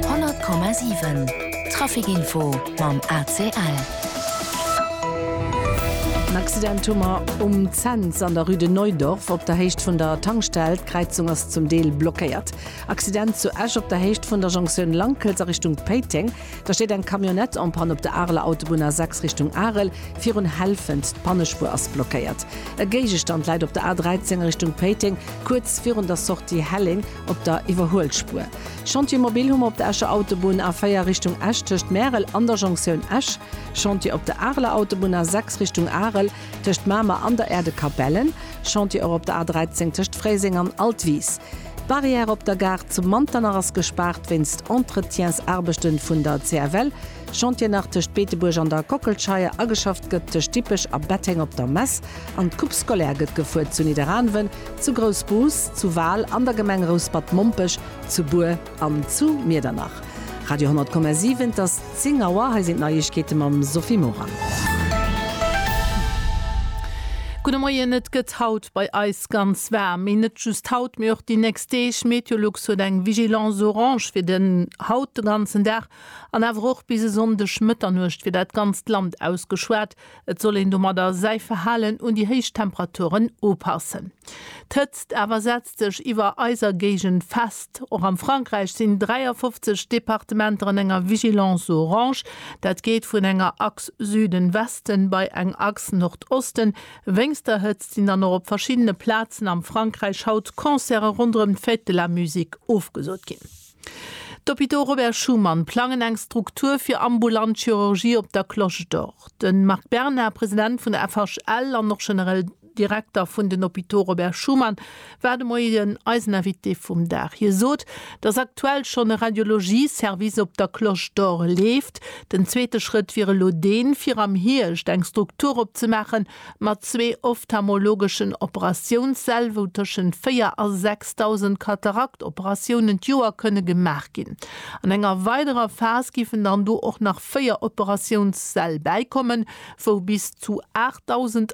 100,7 Trafic Info mam ACL. En Accident hu mer um Cents an der Rue de Neudorf op der Héicht vun der Tankstell. D'Kräizung ass zum Deel blockéiert. Accident zu Esch op der Héicht vun der Jonktioun Lankels a Richtung Péiteng. Da steet eng Camionnette en Panne op der Areler Autobunn A6 Richtung Arel virun Helfent. D'Pannespuer ass blockéiert. E Géigestand läit op der A13 a Richtung Péiteng, kuerz virun der Sortie Helleng. op der Iwwerhuelspuer. Chantier mobil hu mer op der Escher Autobunn, A4 Richtung Esch tëscht Märel an der Jonktioun Esch. Chantier op der Areler Autobunn, A6 Richtung Arel tëscht Mamer an der Erdekapellen. Chantier och op der A13 tëscht Fréiseng an Altwis. D'Barrière op der Gare zu Manternach ass gespaart wéinst Entretiensaarbechten vun der CFL. Chantier nach tëscht Beetebuerg an der Kockelscheier ageschafft gëtt, tëscht Dippech a Betteng op der Mess, an d'Coupe scolaire gëtt gefuer zu Nidderaanwen, zu Groussbus, zu Wal, an der Gemeng Rouspert, Mompech, zu Bur an zu Miedernach. Radio 100,7, et ass 10 Auer, hei sinn d'Neiegkeete mam Sophie Morang. Gudde Moien, Et gëtt haut bei eis ganz waarm, mee net just haut, mee och déi nächst Deeg. Meteolux huet eng Vigilance orange fir den haut de ganzen Dag An awer och bis e Sonndeg Mëtternuecht wier dat ganzt Land ausgeschwat. Et soll een domadder säi Verhalen un déi héich Temperaturen upassen. D'Hëtzt awer setzt sech iwwer eiser Géigend fest. Och am Frankräich sinn 53 Departementer an enger Vigilance orange. Dat geet vun enger Achs Süden-Westen bei eng Achs Nordosten. Wéinst der Hëtzt sinn dann och op verschiddene Plazen am Frankräich haut Concerte ronderëm d'Fête de la Musique ofgesot ginn. D'Hôpitaux Robert Schuman plangen eng Struktur fir ambulant Chirurgie op der Cloche d'Or. De Marc Bernard, President vun der FHL an och generell Direkter vun den Hôpitaux Robert Schuman, war de Moien eisen Invité vum Dag. Hie sot, datt aktuell schonn e Radiologie-Service op der Cloche d'Or leeft. Den zweete Schrëtt wier elo deen, fir am Hierscht eng Struktur opzemaachen, Mat zwee ophthalmologeschen Operatiounssäll, wou tëschent 4 a 6.000 Katarakt-Operatiounen d'Joer kënne gemaach ginn. An enger weiderer Phas giffen dann do och nach 4 Operatiounssäll bäikommen, wou bis zu 8.000.